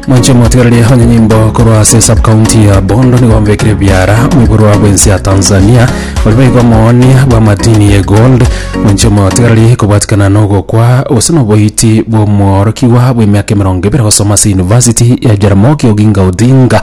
mwanche motigareri onye nyimbo korwa ase subcounty ya bondo nigo mbekire biara oiborwa bwensi ya tanzania ori baigo moonia bwa madini ye gold mwanche motigareri kobwatikana nogokwa gose noboiti bw'omworokigwa bw'emiaka emerongo ebere gosoma ase university ya jaramogi oginga odinga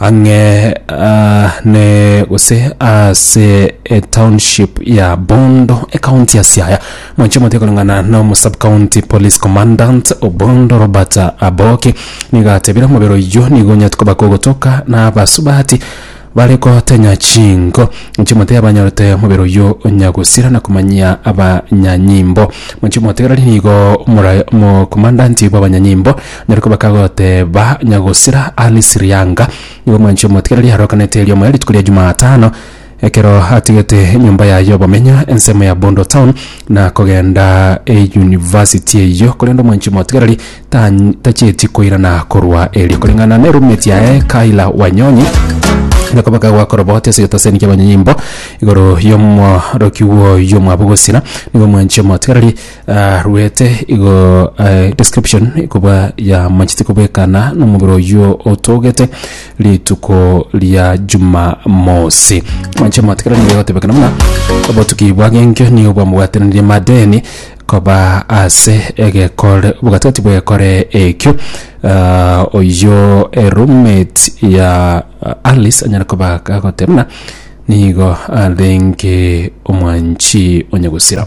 ang'e ne gose ase etownship ya Bondo ekaunti ya Siaya mwanche omote koreng'ana na omosubcounty police commandant Obondo Robert Aboki nigo atebire omobere oyio nigo onyete koba kogotoka na abasubati bare kotenya chinko mwanche omote yabanyorete omobere oyio onyagusira na komanyia abanyanyimbo mwanche omotegereri nigo omora- omokommandanti bw'abanyanyimbo Narikwo bakagoteeba, Nyagosira, Alice Rianga, nigo mwanchi omotikereri arokanete eriomo ya rituko ria Jumatano, ekero atigete enyomba yaye y'obomenyo ensemo ya Bondo Town na kogenda eyunivasiti eyio, korende omwanchi omotikereri tan- tacheti koirana korwa erio. Koreng'ana ne roommate yaye Kayla Wanyonyi, narikwo bakagwa koroboti ase egetaseni ki'abanyanyimbo igoro y'omorokigwa oyio omwabo Gosira, nigo mwanchi omotikereri Aruete igo eh, description kobwa ya manchete kobwekana nomobere oyio otogete rituko ria jumamosi manche matikira nigo egotebekana buna obotuki bwagenkio nigo bwamobwatanirie madeni koba ase egekore obogatigati bw'egekore ekio Ah, oyio eroommate ya ah, alice anyara koba agoteba buna nigo arenge omwanchi onyagusira